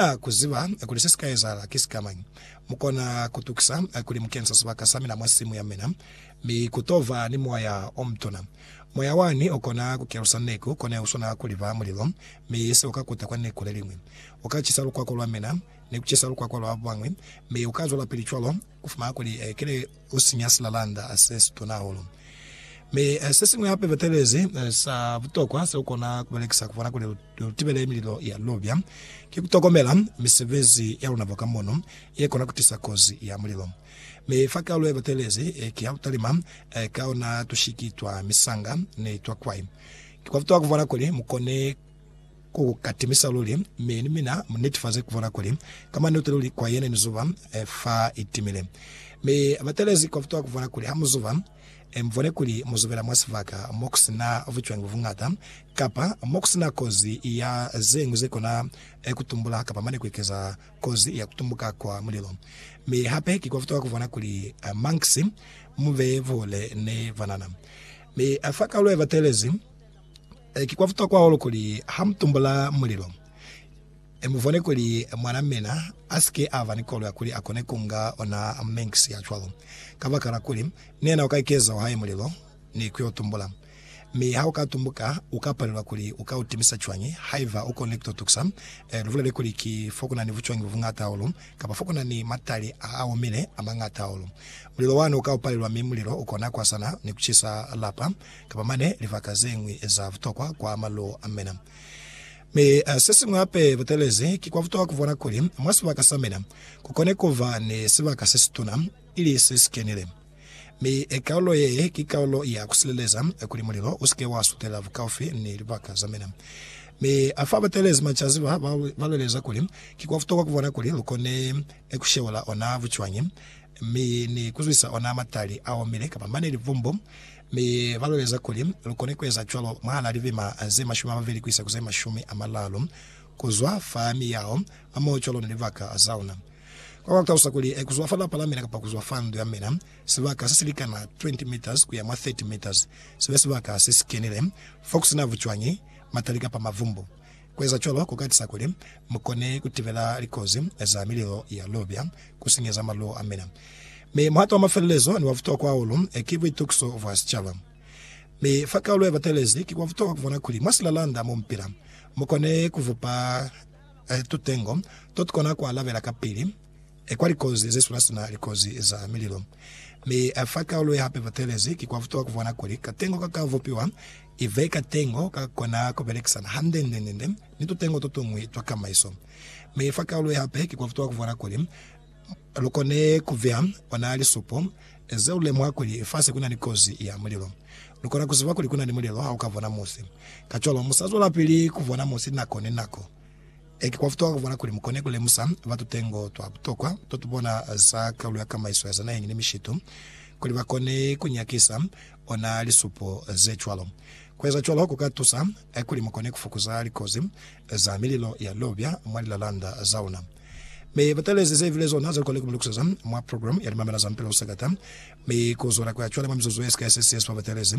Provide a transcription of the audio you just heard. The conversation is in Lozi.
A ku ziba kuli se si ka ezahala ki sikamañi, mu kona ku tukisa kuli mu kensa sibaka sa mina mwa simu ya mina, mi ku to ba ni moya o mutuna. Moya wani u kona ku kelusa neku kone u swana kuli ba mulilo, mi se u ka kuta kwa neku leliñwi. U ka cisa lukwako lwa mina, ni ku cisa lukwako lwa babañwi, mi u ka zwelapili cwalo. Ku fumana kuli ki li u sinya silalanda se si tuna hahulu. Mi se siñwi hape batelezi sa butokwa se u kona ku belekisa ku bona kuli u tibele mililo ya lubya, ki ku tokomela misebezi ya luna bwa ka mono ye kona ku tisa kozi ya mulilo. Mi fa kalu ye batelezi ki ya ku talima ka ona tushiki twa misanga ni twa kwai. Ki kwa butokwa ku bona kuli mu kone Ku ka timisa luli, mi ni mina mu netifaze ku bona kuli ka maneto luli kwa yena ni zuba fa i timile. Mi ba telezi kwa butuha ku bona kuli ha mu zuba, mu bone kuli mu zubela mwa sibaka mo ku si na bucwangi bu buñata, kapa mo ku si na kozi ya ze ñwi ze kona ku tumbula kapa mane ku ekeza kozi ya ku tumbuka kwa mulilo. Mi hape ki kwa butuha ku bona kuli mankisi mu be buhole ni banana. Mi fa kalule ba telezi. Ki kwa butokwa hahulu kuli ha mu tumbula mulilo, mu bone kuli mwan'a mina a si ke a ba ni koloi ya kuli a kone ku nga ona Manx ya cwalo, kabakala kuli ni yena u ka ikeza wa hae mulilo ni ku yo tumbula. Mi ha u ka tumbuka, u ka palelwa kuli u ka u timisa cwañi haiba u konile ku to tukusa? Lu bulele kuli ki fo ku na ni bucwangi bu buñata hahulu, kapa fo ku na ni matali a a omile a mañata hahulu. Mulilo wani u ka u palelwa, mi mulilo u kona ku hasana ni ku cisa lapa. kapa mane libaka ze ñwi za butokwa kwa maluo a mina. Mi se siñwi hape butelezi, ki kwa butokwa ku bona kuli mwa sibaka sa mina ku kone ku ba ni sibaka se situna, ili se si kenile. Mi kaulo ye ki kaulo ya ku sileleza kuli mulilo u si ke wa sutela bukaufi ni libaka za mina. Mi fa batelezi macaziba ba baleleza kuli ki kwa butokwa ku bona kuli lu kone ku sheula ona bucwañi mi ni ku zwisa ona matali a omile kapa mane libumbu Mi ba lweleza kuli, Lu koni ku eza cwalo mwahal'a lilima ze mashumi a mabeli ku isa ku ze mashumi a malalu ku zwa fa miyao, hamoho cwalo ni libaka za ona. Kwa kwa talusa kuli, Ku zwa fa lapa la mina kapa ku zwa fa ndu ya mina, sibaka se si likana 20 meters ku ya mwa 30 meters, si be sibaka se si kenile, fo ku si na bucwañi, matali kapa mavumbu. Ku eza cwalo ku ka tisa kuli mu kone ku tibela likozi za mililo ya lubya ku sinyeza maluwo a mina. Mi muhato wa mafelelezo ni wa butokwa hahulu ki buitukiso bwa sicaba. Mi fa kaulo ye batelezi, ki kwa butokwa ku bona kuli mwa silalanda mo mu pila, mu kone ku bupa tutengo to tu kona ku alabela kapili. e kwa likozi ze sula sina likozi za mililo, mi a fa kaulo ye hape batelezi. Ki kwa butuha ku bona kuli katengo ka ka vupiwa i be katengo ka ka kona ku belekisana hande-nde-nde ni tutengo to tuñwi twa kamaiso. Mi fa kaulo ye hape ki kwa butuha ku bona kuli lu kone ku beya ona lisupo ze lu lemuha kuli fase ku na ni kozi ya mulilo. Lu kona ku ziba kuli ku na ni mulilo ha u ka bona musi. Kacwalo, mu sa zwelapili ku bona musi nako ni nako. Ee, ki kwa butokwa ku bona kuli mu kone ku lemusa batu tutengo twa butokwa to tu bona za kaulo ya kamaiso ya za naheñi ni mishitu, kuli ba kone ku nyakisa ona lisupo ze cwalo. Ku eza cwalo ku ka tusa kuli mu kone ku fokoza likozi za mililo ya lubya mwa lilalanda za ona. Mi ba talezi ze bile zona ze lu kone ku mi lukuseza mwa programu ya limamela za Mpela u Sakata, mi ku zwela ku ya cwale mwa mizuzu ye si ka ye 60 ba talezi